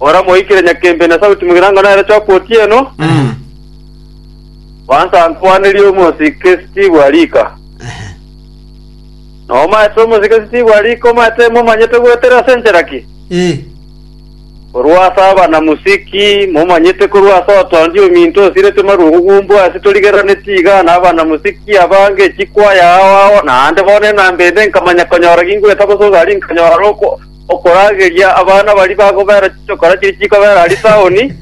Oramoikire nyakembe na sauti mogirango nere choka otieno, gwansa nkwanerie omosike Steve Arika. Na omaete omosike Steve Arika omaete momanyete goetera ase enchera ki? Eh. Korwa ase abanamusiki, momanyete korwa ase otondi ominto osiretwe marungu gumbu ase torigeraneti iga na abanamusiki abange chikwaya ao ao naende bono enamba ende nkamanya konyora gingoeta gose ogari nkanyora roko okorageria abana baria bagobera chichokora chiria chikobera aria taoni,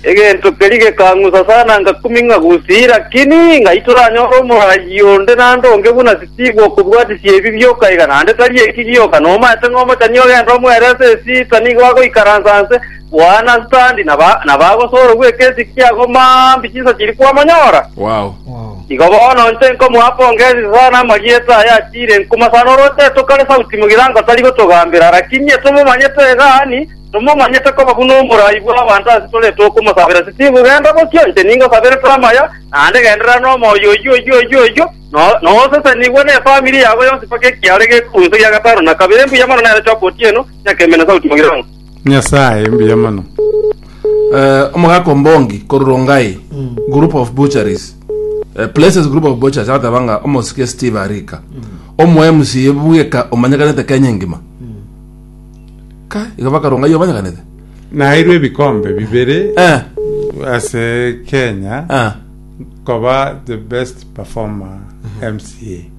egento keria gekang'usa sana ngakuming'a gusii, lakini ng'ai toranyore omoraai onde naende onge buna Steve okobwatisia ebi bioka iga, naende tari eki gioka, nomaete ng'a omochani ogende omwerese esita nigo agoikaransa nse, Boana Standi na ba- na bagosoorwa gw'ekesi kia Gomambi chinsa chiria kwamonyora. Wow. Igo bono inche nkomoa pongezi sana amarieta aya achiire nkuma sana oroche tokare sauti mogirango tari gotogambera lakini etomomanyete egani tomomanyete koba buna omorai bw'abanto ase tore tokomosabera Steve genda bokio inche ningosabere tore amaya naende genderera nomoyo oyio oyio oyio oyio no- nosesenigwe nefamiri yabo yonsi mpaka ekiaro gekorusia gia gatano na kabere mbuya mono nere Job Otieno nyakembe na sauti mogirango Nyasaye mbuya mono. Eh, omogaka ombongi koru rongai mm. group of butcheries eh, places group of butcheries agateba nga omosike steve arika mm. omo mc bweka omanyekanete kenya engima mm. ka iga bakarongai omanyekanete nairwe ebikombe bibere eh. ase kenya eh. koba the best performer mca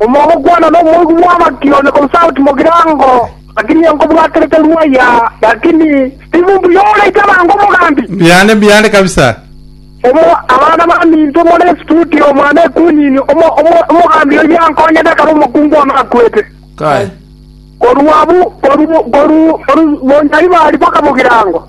Omogokwana nomoigwa bw'amaki one konsauti mogirango, lakini nkobwaterete rwaya, lakini tibu mbuya oraite abange omogambi. Mbiane mbiane kabisa. Omo abana baminto more studio omwana ekunyini omo omo omogambi oyio ankonyete ekero omokungu one akwete. Kai. Korwa abu koru koru koru bonyari bari baka mogirango.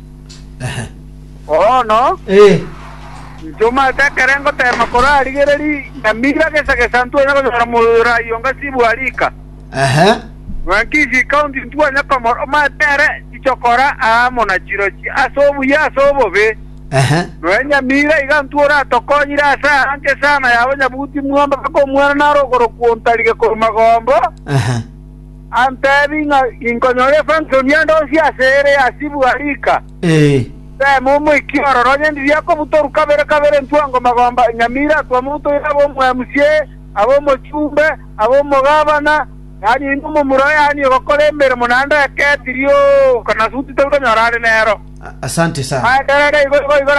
Bono Ee. nchomate ekerengo teema korarigereri nyamira gesa gesa ntwanya konyora moyo orayi onga sibwa rika. Ehe. Ng'wanki ici ikaunti ntwanya komora omate ere chichokora aamo na chirochi ase obuya ase obobe. Ehe. Noe nyamira iga ntwe oratokonyire ase aa nka esana y'abanyabuti mwamba baka omwana naro ogoro kwontarige korwa magombo. Ehe. Ampebi ng'a inkonyora efanso niandosie ase ere ya sibwa rika. Temo omoiki ororo onye ndiri akobutorwa kabere kabere ntwe ongo magomba, enyamira atwe omonto oyo abe omwemusie, abe omochumbe, abe omogabana, yaani oino omomura oyaanire gokora emeremo naende eke etiri, oo, okanasuti torikonyora are nero. Aenderere igo igo igo.